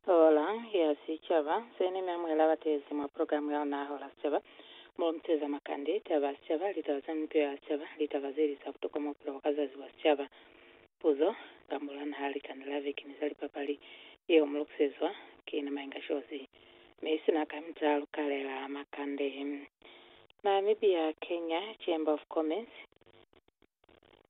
Hola ya Sicaba, se ne mia mwela batezi mwa program ya luna Hola Sicaba, mo lu muteza makande, taba ya sicaba, litaba za mipilo ya sicaba, litaba ze li za butokwa mwa bupilo bwa ka zazi bwa sicaba, puzo, kambo lwa naha, likanda la veki ni za lipapali, yeo mu lukisezwa ki na Mainga Shozi. Mi sina ka mita lu kalela makande. Namibia, Kenya, Chamber of Commerce,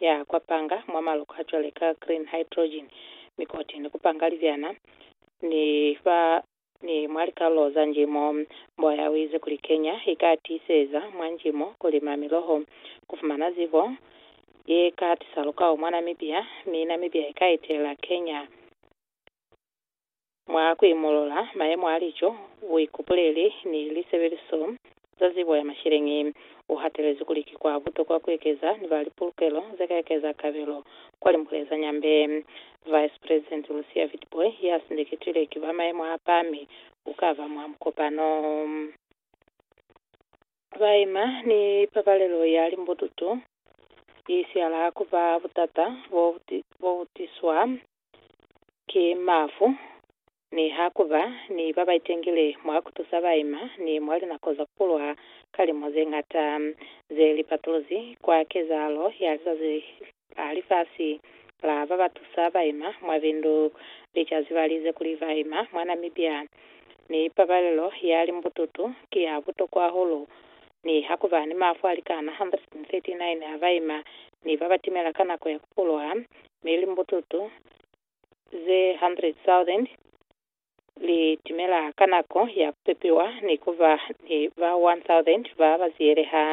ya kwa panga mwa maloko a cwale ka green hydrogen, mikoti, ni ku panga libyana, ni fa ni mwa likalulo za njimo. Mboya u ize kuli Kenya i ka tiiseza mwa njimo ku lima miloho, ku fumana zibo ye ka tisa lukao mwa Namibia, mi Namibia i ka itela Kenya. Mwa ku imolola mayemo a lico, buikupuleli, ni lisebeliso za zibo ya masheleñi, u hatelezi kuli ki kwa butokwa ku ekeza ni ba lipulukelo ze ka ekeza kabelo kwa limbule za Nyambe. Vice President Lucia Witbooi ya sindeketwile ki ba mayemo a pami u ka ba mwa mukopano. Ba ima ni pabalelo ya limbututu, i siala ku ba butata bo bu tiswa ki mafu, ni ha ku ba ni ba ba itengile mwa ku tusa baima ni mwa linako za ku kulwa ka limu ze ñata ze li patuluzi kwa kezahalo ya lizazi la lifasi la ba ba tusa baima mwa bindu. Li ca zibalize kuli baima mwa Namibia ni pabalelo ya limbututu ki ya butokwa hahulu. Ni ha ku ba ni mafu a likana 139 a baima ni ba ba timela ka nako ya ku kulwa mi limbututu ze 100,000 li timela ka nako ya ku pepiwa ni ku ba ni ba 1,000 ba ba ziyeleha.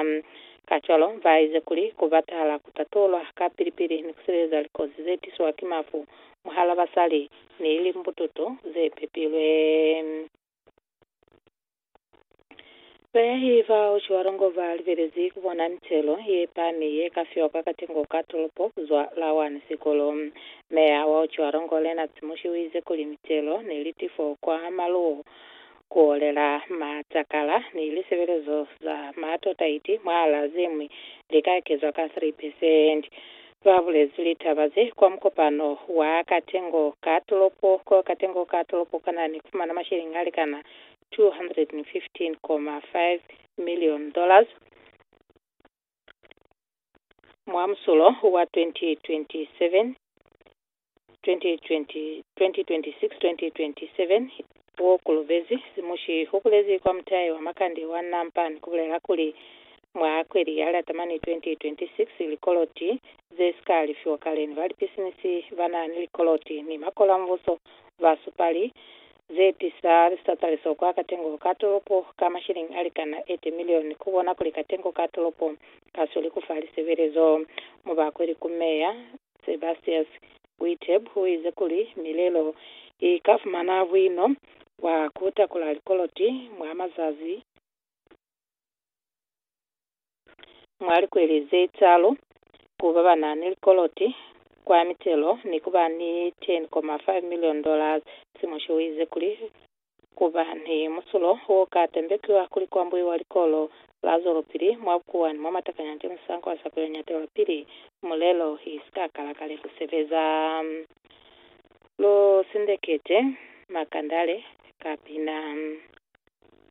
Kacwalo, ba ize kuli ku batala ku tatulwa ka pili-pili ni ku sibeleza likozi ze tiswa ki mafu mwahal'a basali ni limbututu ze pepilwe. Bayahi bao cwalo ngo ba lubelezi ku bona mitelo ye pami ye ka fiwa kwa katengo ka tolopo ku zwa Lawan sikulu. Meya wao cwalo ngo Lennarts Mushi uize kuli mitelo ni litifo kwa maluwo ku olela matakala ni lisebelezo za maatotaiti mwaalaa ze ñwi li ka ekezwa ka 3 percent. Ba bulezi litaba ze kwa mukopano wa katengo ka tolopo ko katengo ka tolopo kana ni fumana masheleñi a likana $215.5 million mwa musulo wa 2027. 2026-2027 wo kolobezi simushi ho bulezi kwa mutahe wa makande wa Nampa ni ku bulela kuli, Mwa kweli ya Latamani 2026, likoloti ze si ka lifiwa kale ni ba lipisinisi ba na ni likoloti ni makolambuso ba supali ze tisa lisataliso kwa katengo ka tolopo ka mashilingi a likana 80 milioni ku bona kuli katengo ka tolopo ka sweli ku fa lisebelezo. Mubakweli ku Meya Sebastius Witteb uize kuli, Milelo i ka fumana buino bwa ku takula likoloti mwa mazazi mwa likweli ze talu ku ba ba na ni likoloti kwa mitelo ni ku ba ni 10.5 million dollars. Timoshi uize kuli, Ku ba ni musulo wo ka tembekiwa kuli kwa mbuiwa likolo la zwelopili mwa bukuwani mwa matakanya ki musanko wa sa kuli nyatelwa pili mulelo i si ka kala kale ku sebeza. Lu sindeketi makandale ka pina.